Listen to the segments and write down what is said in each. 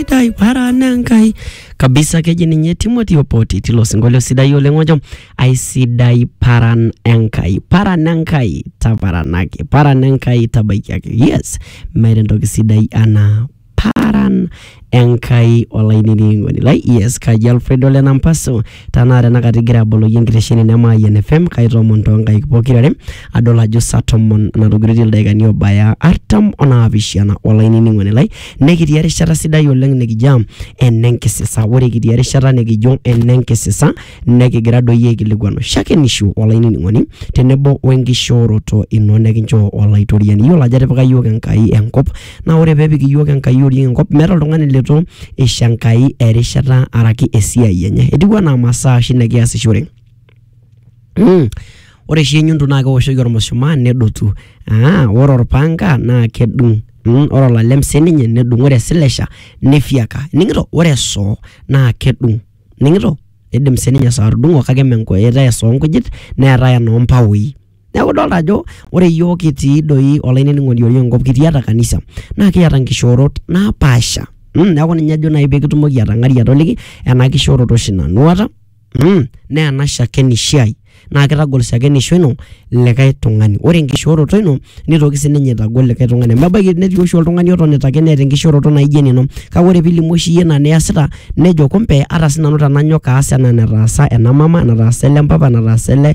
sidai wara nenkai kabisa keji ninye timothy opoti tilo sinkolio sidai oleng ojo aisidai paran enkai paran enkai taparanaki paran enkai tabaikiaki yes meeta entoki sidai anaa paran enkai olainining'oni lai yes kaji alfredo lenampaso Tanaa tenakata igira aboloki enkitesheni ino e Mayian FM, kaitomon toonkaik pokira are adol ajo saa tomon natogiroitie ildaikani oobaya artam onaapishana. Olainining'oni lai, nekitii erishata sidai oleng nikijo enenkisisa. Ore kitii erishata nikijo enenkisisa nekigira doi aikilikuanu shakenisho olainining'oni tenebo wenkishooroto ino nikinchoo Olaitoriani. Iyiolo ajo etipika iyiook Enkai enkop Naa ore pepik iyiook Enkai oriong enkop meeta oltung'ani leitu eisho Enkai erishata araki esiai enye. Etiu enaa imasaa oshi nikiasishore mmh, ore oshi enyundu naa kewoshoki ormushumaa nedotu aa ore orpanga naa kedung mmh, ore olalem siininye nedung, ore esilesha nifyeka. Ining'ito? Ore esoo naa kedung. Ining'ito? Eidim siininye esoo atudung'o kake mme enkoitoi esoo oonkujit neetae enoompaoi. Neeku idolta ajo ore iyiok kitii doi olainining'oni otii enkop kitii atua kanisa naa kiata nkishoorot napaasha mm neeku ninye ajo nai pee kitumoki atang'ari atoliki ena kishooroto oshi nanu aata mm naa ena shakenisho ai naa kitagol shakenisho ino likai tung'ani. Ore enkishooroto ino nitoki sininye aitagol likai tung'ani amu kebaiki netii oshi oltung'ani otonita ake neeta enkishooroto naijo enino kake ore piilimu oshi iyie ina niyasita nejo kumbe ata sinanu tenanyok aas enaa enetaasa ena mama, enetaasa ele mpapa, enetaasa ele...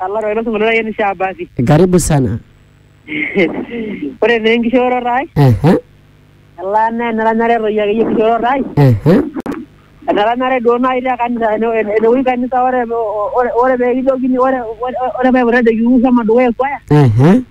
Alar ilo sinkolio lai enisha abasi. Karibu sana. Ore naa enkishooroto ai, Ehe, elaa naa eneranyare toi akeyie enkishooroto ai, ehe, eneranyare duo nai te kanisa ene- ene- enewueji kanisa ore ore- ore peekijokini ore ore- ore paipot ajoki wou shomo dukuya ekwaya, ehe.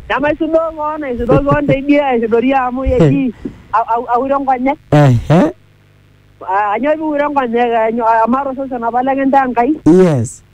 nemaisudoo koon aisudoo koon teidie aisudori amu eji au- au- aure nkonyek. Ehe, Ah, Anyoo piure nkonyek? Anyoo- Amaa tosesen apa lekintaa Enkai? yes.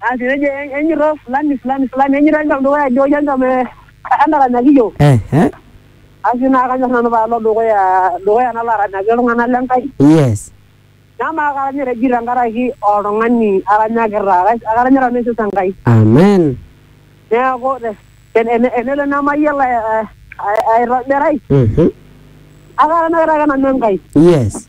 Asi nejo enyorra fulani fulani fulani enyorra engam dukuya ajo ore engam entaranyaki iyiok. Eh eh. Asi naa kanyor nanu paalo dukuya dukuya nalo aranyaki iltung'anak le Nkai. Yes. Namaa karanya te jii tenkaraki oltung'ani aranyakita. Karanya nanu aisesa Enkai. Amen. Neeku tenelo nemayiolo aitobirai. Akaranyakita ake nanu Enkai. Yes.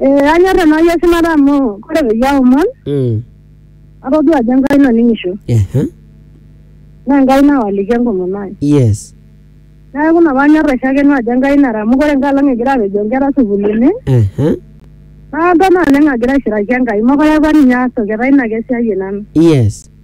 Eh, anyor tenai eshumata amu ore peyie aomon Mm. atodua ajo enkai naning'isho Ehe. naa enkai nawaliki enkomom ai Yes. neeku ina paanyor aishakeno ajo enkai nara amu ore enkai alang egira apejoo inkera sukuulini Ehe. naata naleng agira aishiraki enkai mokure apa ninye aas toki etaa ina ake esiai e nanu Yes.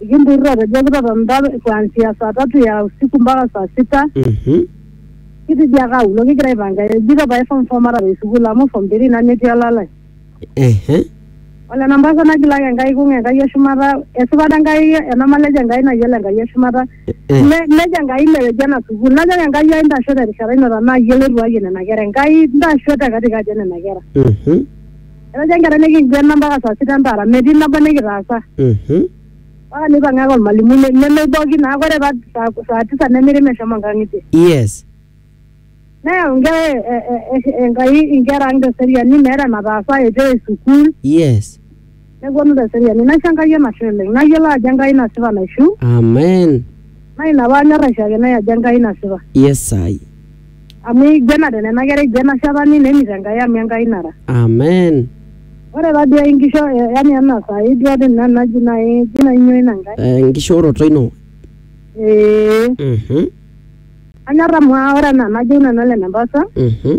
Ikinturrurro atejo kitotoni mpaka kuanzia saa tatu ya usiku mpaka saa sita Mhm. kitidiaka aulo kigira aipanga ejito pae form four matara esukuul amu form three ina netii olalai Ehe. ole nampasa nagilaki enkai kung enkai eshumata esipata enkai ena malejo enkai nayiolo enkai eshumata Eh. Ne- nejo enkai ileweji ena sukuul najoki enkai ai ntasho terishata ino tenaa iyie loirriwayie nena kera enkai ntasho te katikati e nena kera Mhm. Etaja nkera nikiguena mpaka saa sita entara metii nabo nikitaasa. Mhm. Mpaka neipang'a ake olmalimui ne- nemeiboki naa ore pa saa, saa tisa nemiri meshomo nkang'itie. Yes. Neyau nkera e, e, e, Enkai inkera ang' te seriani meeta enataasa eitu eyae sukuul Yes. nepuonu te seriani. Naisho Enkai enashe oleng. Nayiolo ajo Enkai nasipa naishiu Amen. naa ina paanyor aisho ake nai ajo Enkai nasipa. Yes, I. amu eigenate nena kera eigen ashetani nemit Enkai amu Enkai nara. Amen. Ore taduo enkisho eh, yani ena saai duo ade ina naji nai eji nai nyoo ina Enkai. Eh, Enkishooroto ino. Ee, Mhm. anyorr amu aa ore enaa enajo nanu Hellen Embata, Mhm.